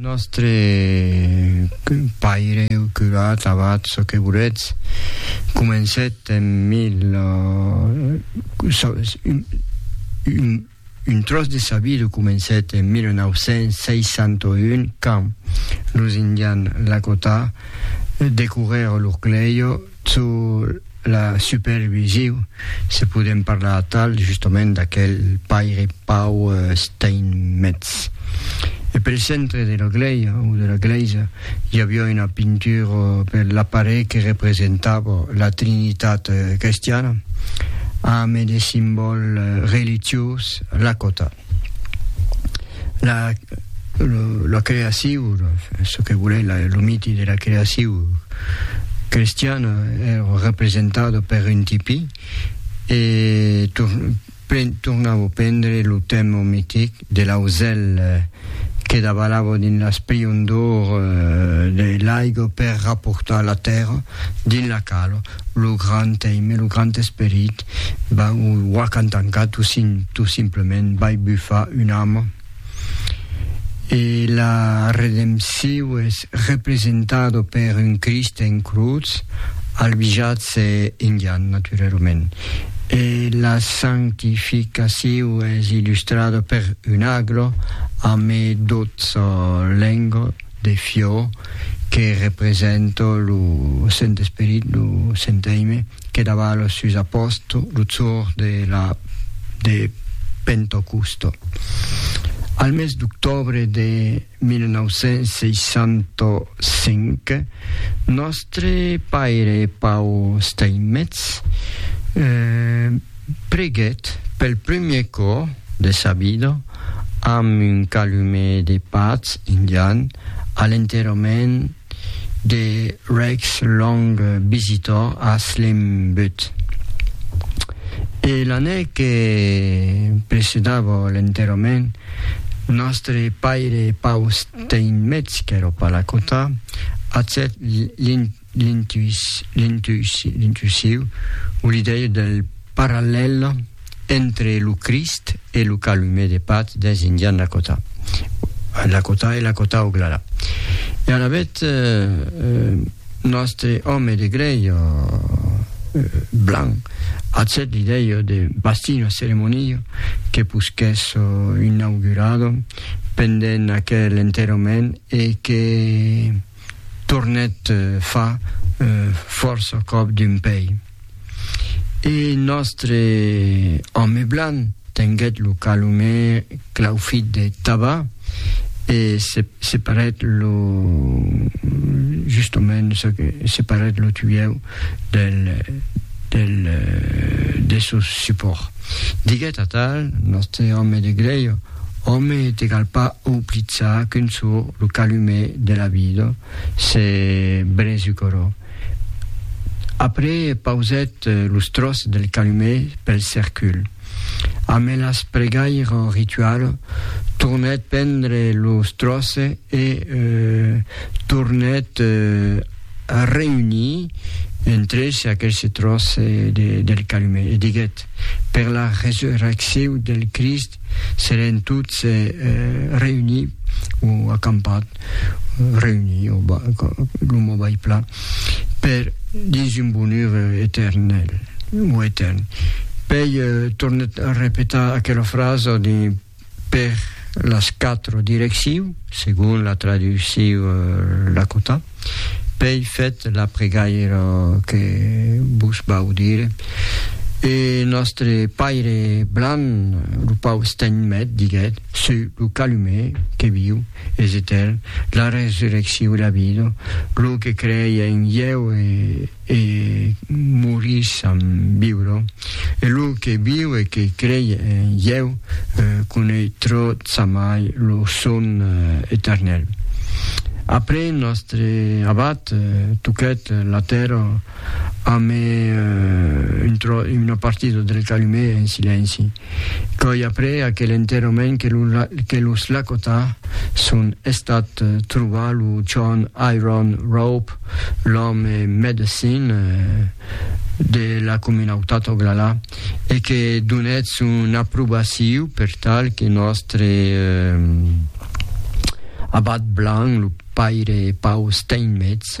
Nòstre paire, curat, abat, çò que voletz, comencèt en mil. Un tròç de sa vida comencèt en 1961 quand los Indians Lakota decourèron l'Urcleio, Sus la supervisiu, se podem parlar atal justament d'aquel paire Pau Steinmetz. E pel centre de la glèia, o de la glèisa, i aviá una pintura per l'aparelh que representava la Trinitat crestiana, ambe de simbòl religiós, la còta. la, lo, la creaciu, ce que voulait la, lo miti de la creaciu cristiana era eh, representado per un tipi e tur, pren, tornavo prendre lo temo mitic de l'auzel eh, que davalavo dins l'asprion d'or eh, de l'aigo per rapportar la terra dins la calo, lo grand teime, lo grand esperit Ben, o ua qu'an tancat o sin tot simplement vai bufar una ama. E la redempciu es representado per un Crist en crotz, albijats e indian naturerumènt. E la sanctificaciu es illustrada per un aglo amb e dotze lengo de fiò que representa lo Sent Esperit, lo Sent Aime. Que davalo sus a posto lo zor de la de Pentocusto. Al mes d'octòbre de 1965, nòstre paire Pau Steinmetz preguèt pel primièr còp de sa vida amb un calumet de patz indian a l'enterrament de Rex Long Visitor a Slim Butte. E l'année que precedava l'enterrament, nòstre paire Paul Steinmetz, qu'èra pas la cota, acèt l'intuissiu, o l'idèia del parallèl, entre lo Crist e lo calume de Pat dens Indian Lakota. Lakota e Lakota Oglala. E alavetz nòstre òme de grèi o blanc hazèt l'idèia de bastir una ceremonia que posquèss inaugurar pendent aquel enterrament e que tornèt far fòrça còp d'un pei. E nòstre òme blanc tenguèt lo calumè claufit de taba e se separèt lo justament se separèt lo tuièu del del de sos supòrts. Diguèt atal nòstre òme de grèia, Òme, te cal pas auplitzar qu'un çò lo calumè de la vida se bresucorò. Après pausèt los tròç del calumet pel cercul. Amé las pregaire en ritual, tornèt pendre los tròce e tornèt reunir entre se aquelse tròce del calumet e diguèt, Per la resurrecciu del Crist, seren tots reunir o acampat reunir o lo mot bai plan per dins un bonur eternel o etern pei tornet a repetar aquela frasa de per las quatre direcciu segon la traducciu Lakota Pei fèt la pregaira que vos vau dire, e nòstre paire blanc, lo pau Steinmet, diguèt, Suu lo calumer que viu, es etèrn, la resurrecciu e la vida, lo que crei en ieu e E morís en viure. E lo que viu e que crei en ieu conei tro tsamai lo son eternel. Après nòstre abat toquèt la tèrra ame una partida del calumet en silenci. Coi après aquel enterrament que los Lakota son estat trobar lo John Iron Rope, l'òme medecin de la comunautat Oglala, e que donèt son aprobaciu per tal que nòstre abat blanc, lo paire Paul Steinmetz,